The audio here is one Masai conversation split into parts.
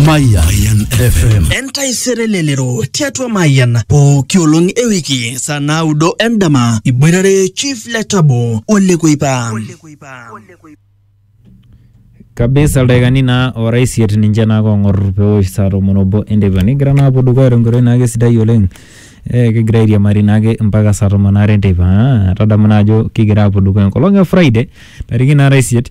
Mayan FM. entaisere lelero tiatua mayian pooki olong e wiki saa naudo endama iboitare chief letabo olekuipa kabisa ildaikani naa ora isiet ninche naa kong'or pewosh saa tomon obo enteipa nigira naa apuo dukuya tenkoitoi naake sidai oleng eh, kigira airiamari naake mpaka saa tomon aare enteipa Ah, tadamu naa ajo kigira apuo dukuya enkolong e friday tariki naara isiet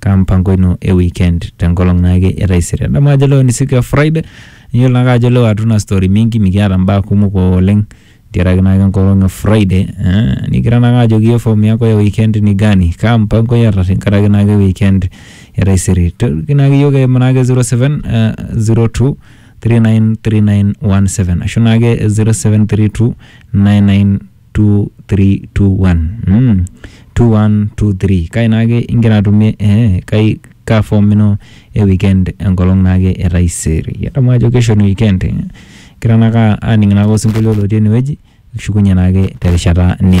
kaa mpango ino e weekend tenkolong naake e taisere adamu ajo leo ni siku ya friday niyiolo naake ajo leo hatuna story mingi mikiata mbaa kumok oleng ntiaraki naake enkolong e friday eh, nikira naake ajoki iye form yako ya weekend ni gani kaa mpango iyata tenkaraki naake weekend e taisere toki naake iyiok eimu naake 07 eh, 02 393917 ashu naake 0732 99 2321 2123 kai naake ingira atumie eh, kai kaa form ino e weekend enkolong naake e taisere idamu ajo kesho ni weekend eh? kira naake aning naake osinkolio lotii enewueji kishukunye naake terishata ni